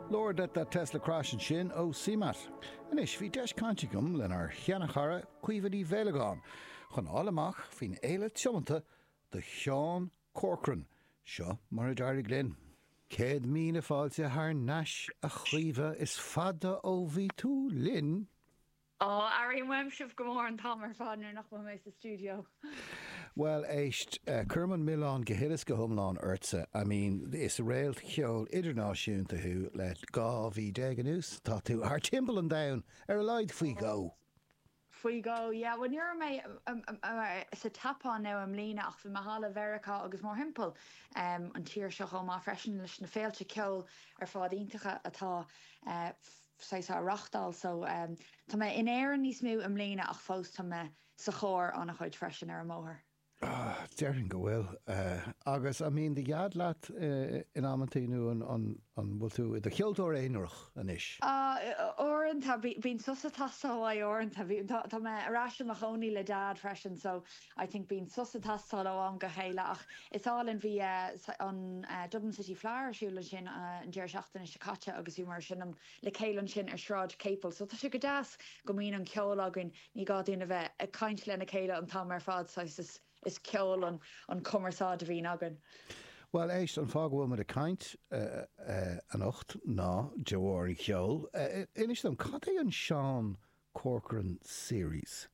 Lord, Let That Tesla Crash ansin ó CMAT. Anois, bhí deis cainte agam lenár sheanchara Caoimhe Ní Mhaolagáin chun a fháil amach faoin fhéile tiomanta do Sheán Corcoran. Seo mar a d'éirigh linn. Céad míle fáilte thar n-ais a Chaoimhe, is fada ó bhí tú linn! Ó, airím uaim sibh go mór an t-am ar fad nuair nach bhfuil! Bhuel, éist, cuirim an milleán go huile is go hiomlán ortsa. I mean, is réalt cheoil idirnáisiúnta thú le 12 mhí anuas, tá tú thar timpeall an domhain, ar a laghad faoi dhó! Faoi dhó, yeah. Bhuel, ní raibh mé sa tSeapáin, nó i mbliana, ach bhí mé thall i Meiriceá agus mórthimpeall an tír seo chomh maith freisin, leis na féilte ceoil ar fad iontacha atá. saghas á reáchtáil so tá mé in Éirinn níos mó i mbliana ach fós tá mé sa charr an-chuid freisin ar an mbóthar. Déarfainn go bhfuil. Agus an mbíonn do dheaid leat in amantaí nó an bhfuil tú i do cheoltóir aonarach anois? Uaireanta bíonn sos atá go maith uaireanta. Tá mé ar ais i mo chónaí le dad freisin so I think bíonn sos ag teastáil ó am go chéile ach is álainn, bhí an Dublin City Fleadh ar siúl ansin an deireadh seachtaine seo caite agus bhíomar ag seinm le chéile ansin ar Sráid Capel so tá sé go deas go mbíonn an ceol againn, ní gá dúinn a bheith ag caint lena chéile an t-am ar fad, saghas, is ceol an cumarsáid a bhíonn againn. Bhuel éist, an fáth go bhfuil muid ag caint anocht ná de bharr an cheoil. Inis dom, cad é an Sean Corcoran Series?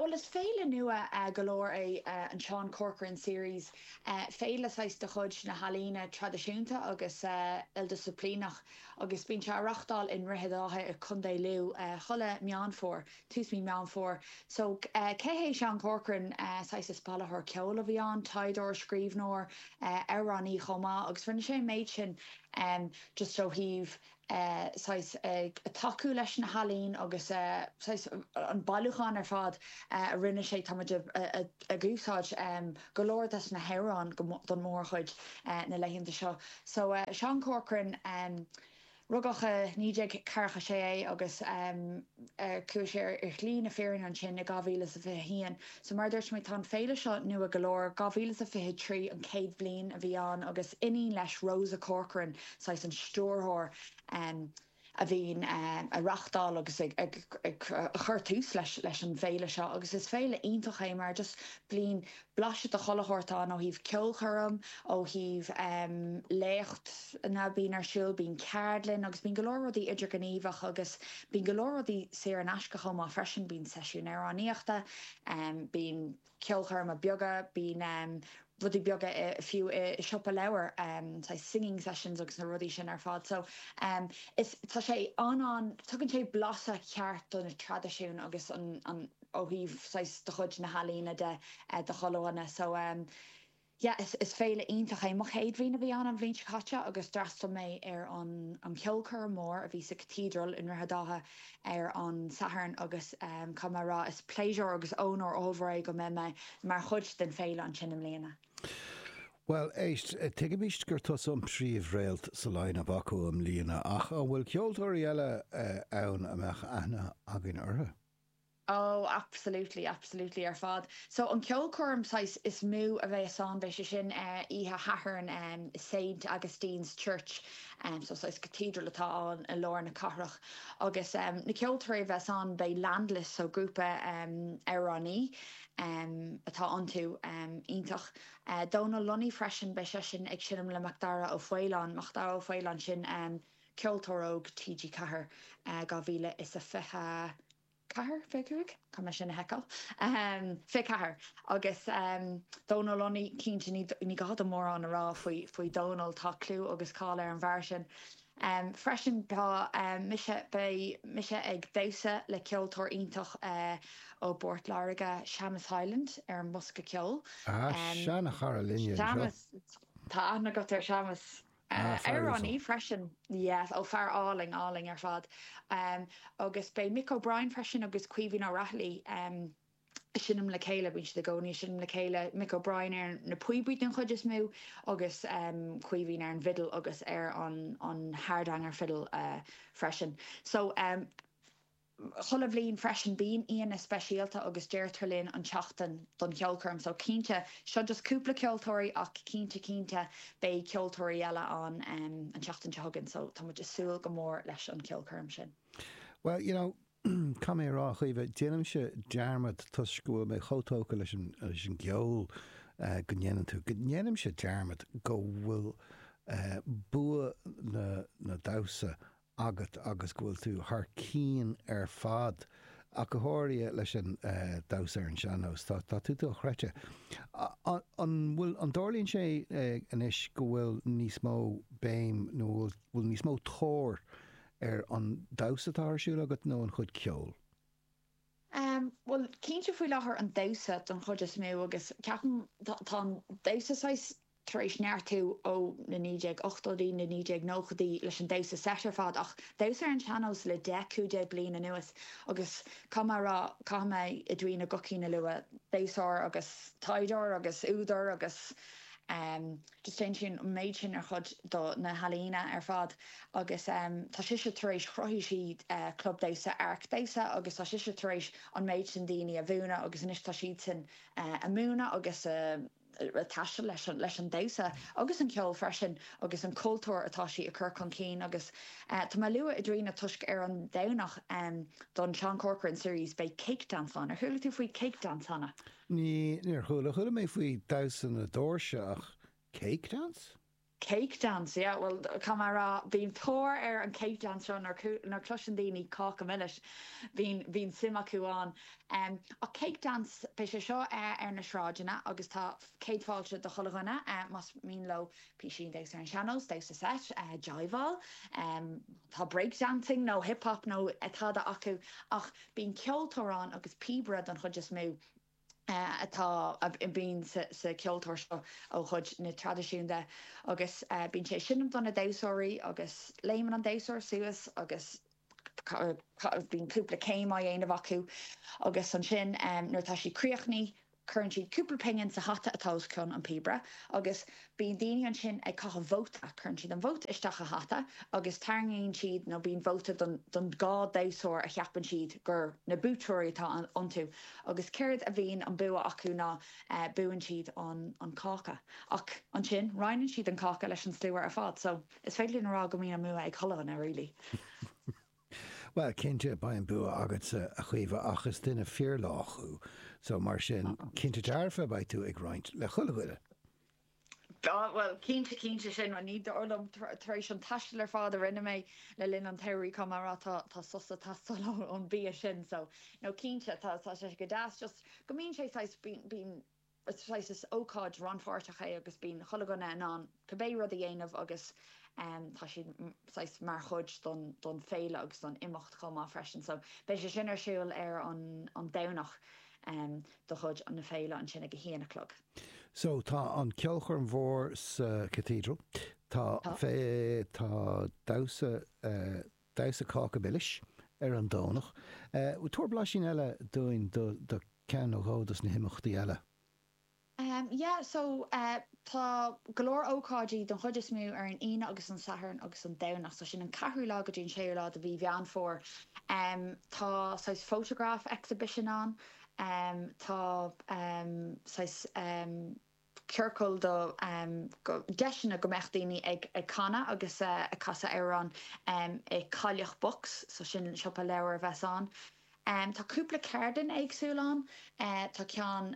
Bhuel, is féile nua go leor é an Sean Corcoran Series, féile saghas de chuid na healaíne traidisiúnta agus ildisciplíneach agus bíonn sé á reáchtáil i nDroichead Átha i gContae Lú chuile Meán Fómhair, tús mí Meán Fómhair. So, cé hé Sean Corcoran? Saghas, is bailitheoir ceoil a bhí ann, taighdeoir, scríbhneoir, amhránaí chomh maith agus rinne sé an méid sin just ó thaobh eh, saghas, ag tacú leis na healaín agus eh, saghas, an bailiúchán ar fad eh a rinne sé, táimid a, a, ag úsáid em go leor des na hamhráin ón, don mórchuid eh na laethanta seo. So eh Seán Corcoran, em rugadh i naoi déag ceathracha sé é agus em, chuaigh sé ar shlí na fírinne ansin i 2021. So mar a dúirt mé, tá an féile seo nua go leor, 2023 an chéad bhliain a bhí ann agus iníon leis, Rosa Corcoran, saghas an stiúrthóir a bhíonn ag reáchtáil agus ag cur tús leis an bhféile seo agus is féile iontach é mar just bliain blaiseadh de chuile shórt ann, ó thaobh ceolchoirm, ó thaobh léachtanna, bíonn ar siúl, bíonn ceardlann agus bíonn go leor rudaí idirghníomhach agus bíonn go leor rudaí saor in aisce chomh maith freisin, bíonn seisiúin amhránaíochta, bíonn ceolchoirmeacha beaga, bíonn rudaí beaga fiú i siopa leabhar, saghas singing sessions agus na rudaí sin ar fad. So is, tá sé an-an, tugann sé blaiseadh ceart do na traidisiún agus an, ó thaobh saghas de chuid na healaíne de, de chomh-ealaíona. So yeah, is is féile iontach é. Mo chéad bhliain a bhí ann an bhliain seo caite agus d'fhreastail mé ar an an cheolchoirm mór a bhí sa Cathedral i nDroichead Átha ar an Satharn agus caithfidh mé a rá is pléisiúr agus ónóir ollmhór é go mbeidh mé mar chuid den fhéile ansin i mbliana. Bhuel, éist, tuigimse gur tusa an príomh-réalt sa line-up acu i mbliana ach an bhfuil ceoltóirí eile ann a mbeadh aithne againn orthu? Ó, absolutely, absolutely ar fad. So, an ceolchoirm saghas is mó a bheas ann, beidh sé sin oíche Shathairn i Saint Augustine's Church, so saghas cathedral atá ann i lár na cathrach. Agus na ceoltóirí a bheas ann, beidh Landless, so grúpa amhránaí atá iontu, iontach. Dónal Lunny freisin, beidh seisean ag seinm le Macdara Ó Faoláin, Macdara Ó Faoláin sin, Ceoltóir Óg TG4, 2024, fiche, caithfidh mé é sin a sheiceáil, 24, agus Dónal, Lunny cinnte, ní gá dom mórán a rá faoi Dhónal, tá clú agus cáil ar an bhfear sin freisin. Tá mise, beidh mise ag damhsa le ceoltóir iontach ó bPort Láirge, Seamus Hyland, ar an mbosca ceoil. Ah, sea, cara linne anseo. Seamus, tá aithne agat ar Seamus. Ah, fear is amhránaí freisin. Yes, ó fear álainn, álainn ar fad. Agus beidh Mick O'Brien freisin agus Caoimhín Ó Raghallaigh ag seinm le chéile, bíonn siad i gcónaí ag seinm le chéile, Mick O'Brien ar na píobaí den chuid is mó agus Caoimhín ar an bhfidil agus ar an hardanger fiddle freisin. So. 'chuile bhliain freisin. Bíonn aíonna speisialta agus deirtear linn an tseachtain don cheolchoirm so cinnte, seo just cúpla ceoltóirí ach cinnte cinnte beidh ceoltóirí eile ann an tseachtain seo chugainn so tá muid a' súil go mór leis an cheolchoirm sin. Bhuel, you know, caithfidh mé a rá, a Chaoimhe, déanaimse dearmad toisc go bhfuil mé chomh tógtha leis an, leis an gceol go ndéanann tú, go ndéanaimse dearmad go bhfuil bua na, na damhsa agat agus go bhfuil tú thar cinn ar fad, ach go háirithe leis an damhsa ar an sean-nós. Tá tá tú dochreidte. An bhfuil, an dtarlaíonn sé anois go bhfuil níos mó béim nó bhfuil bhfuil níos mó tóir ar an damhsa atá ar siúl agat nó an chuid ceoil? Bhuel, cinnte faoi láthair an damhsa don chuid is mó agus ceapaim tá tá an damhsa saghas tar éis neartú ó na 1980idí, na 1990idí leis an damhsa seit ar fad, ach damhsa ar an sean-nós le deich, cúig déag bliain anuas agus caithfidh mé a rá, caithfidh mé Edwina Guckian a lua, damhsóir agus taighdeoir agus údar agus em just déanann sí an méid sin ar chuid do na healaíona ar fad agus em tá sise tar éis, chruthaigh sí eh club damhsa, Áirc Damhsa agus tá sise tar éis an méid sin daoine a mhúineadh agus anois tá siadsan eh ag múineadh agus ag taisteal leis an damhsa agus an ceol freisin agus an cultúr atá sí ag cur chun cinn agus tá mé ag lua Edwina toisc ar an Domhnach don Seán Corcoran Series beidh Cake Dance ann. Ar chuala tú faoi Cake Dance cheana? Ní, níor chuala. Chuala mé faoi Damhsa na Doirse ach Cake Dance? Cake dance, yeah, bhuel, caithfidh mé a rá, bíonn tóir ar an cake dance seo nuair, nuair a chloiseann daoine Cáca Milis, bíonn, bíonn suim acu ann. Ach cake dance, beidh sé seo ar na sráideanna agus tá céad fáilte do chuile dhuine más mian leo písín, damhsa ar an sean-nós, damhsa seit, jiveáil, má tá break dancing nó hip hop nó tada acu ach bíonn ceoltóir ann agus píobaire don chuid is mó. atá, a bhíonn sa cheoltóir seo ó chuid na traidisiúnta agus bíonn sé ag seinm do na damhsóirí agus léimeann an damhsóir suas agus bíonn cúpla céim á dhéanamh acu agus ansin nuair atá siad críochnaithe cuireann siad cúpla pingin sa hata atá os cionn an píobaire agus Bíonn daoine ansin ag caitheamh vóta, cuireann siad an vóta isteach i hata agus tarraingíonn siad, nó bíonn vóta don dhá damhsóir a cheapann siad gur na buaiteoirí atá iontu, agus céard a bhíonn an bua acu ná buann siad an cáca. Ach ansin, roinneann siad an cáca leis an slua ar fad, so is féidir linn a rá go mbíonn an bua ag chuile dhuine really. Bhuel, cinnte, beidh an bua agatsa, a Chaoimhe, ach is duine fíorlách thú, so mar sin, cinnte dearfa, beidh tú ag roinnt le chuile dhuine. Bhuel, bhuel, cinnte, cinnte, sin rud ní dóigh liom, tar éis an taistil ar fad a rinne mé le linn an tsamhraidh, caithfidh mé a rá, tá sos ag teastáil ón bia sin, so, no, cinnte, tá, tá sé go deas, just go mbíonn sé saghas, bíonn, bíonn, Is ócáid rannpháirteach é agus bíonn chuile dhuine in ann cibé rud a dhéanamh agus tá siad saghas mar chuid don féile agus don imeacht chomh maith freisin. So beidh sé sin ar siúl ar an Domhnach de chuid na féile ansin ag a haon a chlog. So tá an cheolchoirm mhór sa Cathedral, tá damhsa, tá. damhsa cáca milis ar an Domhnach. Tabhair blaisín eile dúinn de cheann nó dhó des na himeachtaí eile. Ahem, yeah so eh tá go leor ócáidí don chuid is mó ar an Aoine agus an Satharn agus an Domhnach so sin an ceathrú lá go dtí an séú lá de mhí Mheán Fómhair. Em tá saghas photograph exhibition ann, em tá em saghas em. ciorcal do dheiseanna go mbeadh daoine ag canadh agus ag casadh amhrán i Cailleach Box, so sin siopa leabhar a bheas ann. Tá cúpla ceardlann éagsúil ann, tá ceann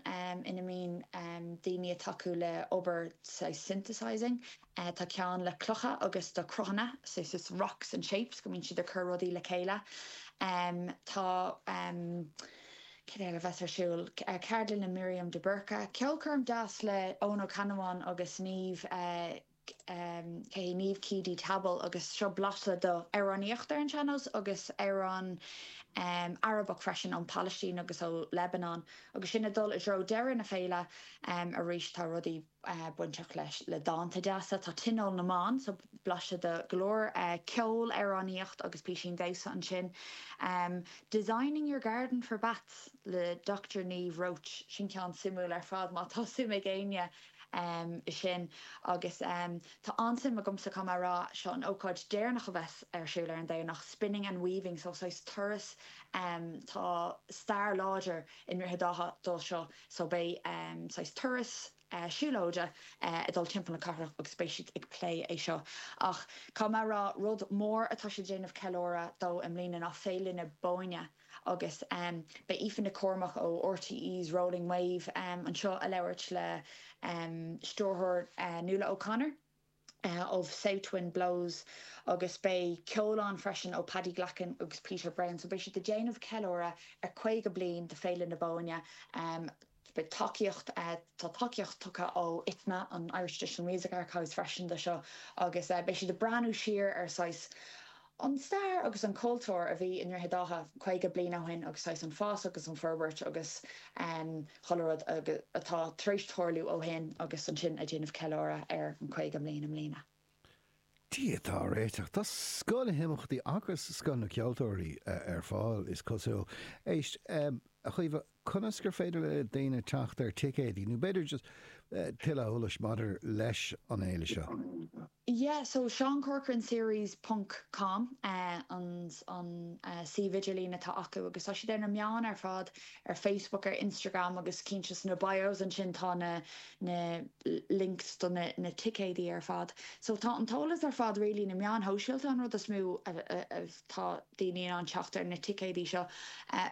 ina mbíonn daoine ag tacú le obair synthesising, Tá ceann le clocha agus cruthanna, so is rocks and shapes, go mbíonn siad ag cur rudaí le chéile. Tá, cad eile a bheas ar siúl, ceardlann le Miriam de Búrca, ceolchoirm deas le Eoin Ó Ceannabháin agus Niamh Ké, Niamh Keady Tabbal agus seo blaiseadh do amhránaíocht ar an sean-nós agus amhrán Arabach freisin ón Pailistín agus ó Lebanon. Agus sinn ag dul i dtreo deireadh na féile arís tá rudaí. bainteach leis le dánta deasa. Tá Tionól na mBan, so blaiseadh de go leor ceol, amhránaíocht agus písín damhsa ansin. Designing your garden for bats le Doctor Niamh Roche, sin ceann suimiúil ar fad má tá suim ag éinne i sin. Agus tá an-suim agamsa, caithfidh mé a rá, seo an ócáid deireanach a bheas ar siúl ar an Domhnach, Spinning and Weaving, so saghas turas, tá stair láidir i nDroichead Átha de seo. So beidh saghas turas siúlóide ag dul timpeall na cathrach agus beidh siad ag plé é seo. Ach caithfidh mé a rá, rud mór atá siad ag déanamh ceiliúradh dó i mbliana ná Féile na Bóinne agus beidh Aoife Nic Cormaic ó RTÉ's Rolling Wave anseo ag labhairt le stiúrthóir Nuala O'Connor. of South Wind Blows agus beidh ceol ann freisin ó Paddy Glackin agus Peter Browne so beidh siad ag déanamh ceiliúradh ar 50 bliain de Féile na Bóinne. Beidh tacaíocht, tá tacaíocht tugtha ó Itma, an Irish Traditional Music Archives freisin de seo agus beidh siad ag breathnú siar ar saghas, An stair agus an cultúr a bhí i nDroichead Átha 50 bliain ó shin agus saghas an fás agus an forbairt agus chuile rud atá tar éis tarlú ó shin agus ansin ag déanamh ceiliúradh ar an 50 bliain i mbliana. Dia atá á réiteach. Tá scoth na n-imeachtaí agus scoth na gceoltóirí ar fáil is cosúil. Éist, a Chaoimhe. Conas gur féidir le daoine teacht ar ticéidí nó b'fhéidir just tuilleadh eolais maidir leis an fhéile seo? Yeah so Sean Corcoran Series ponc com an an suíomh idirlín atá acu agus tá siad ar na meáin ar fad, ar Facebook ar Instagram agus cinnte sna bios ansin tá na na links do na na ticéidí ar fad so tá an t-eolas ar fad really na meáin shóisialta an rud is mó a Tá daoine in ann teacht ar na ticéadaí seo.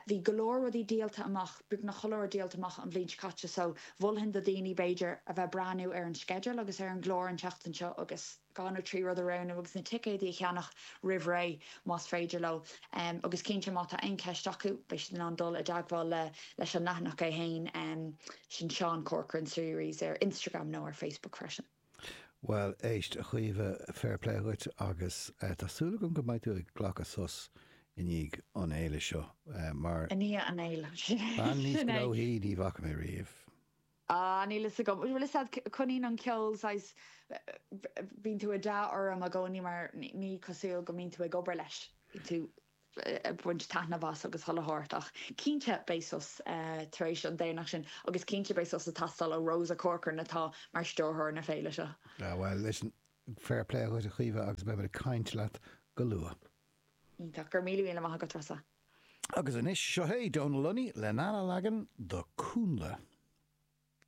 Bhí go leor rudaí díolta amach, beagnach chuile rud díolta amach an bhliain seo caite, so mholfainn do dhaoine, b'fhéidir, a bheith ag breathnú ar an sceideal agus ar an gclár an tseachtain seo agus dhá nó trí rud a roghnú agus na ticéadaí a cheannach roimh ré más féidir leo. Agus cinnte, má tá aon cheist acu, beidh siad in ann dul i dteagmháil le, leis an leathanach é fhéin, sin Sean Corcoran Series ar Instagram nó ar Facebook freisin. Bhuel, éist, a Chaoimhe, fair play dhuit agus tá súil agam go mbeidh tú ag glacadh sos i ndiaidh an fhéile seo mar, I ndiaidh an fhéile, bean níos sin é! gnóthaí ní bhfaca mé riamh. Ah, níl fhios agam. Bhuel, is ea, coinníonn an ceol, saghas, bíonn an t-ádh orm i gcónaí mar ní cosúil go mbíonn tú ag obair leis, bíonn tú. ag baint taitneamh as agus dhul a thabhairt ach cinnte beidh sos tar éis an Domhnach sin agus cinnte beidh sos ag teastáil ó Rosa Corcoran atá mar stiúrthóir na féile seo. Ah bhuel, listen, fair play dhuit a Chaoimhe agus beimid ag caint leat go luath. Iontach. Go raibh míle míle maith agat, Rosa. Agus anois, seo é Dónal Lunny lena leagan de Cúnnla.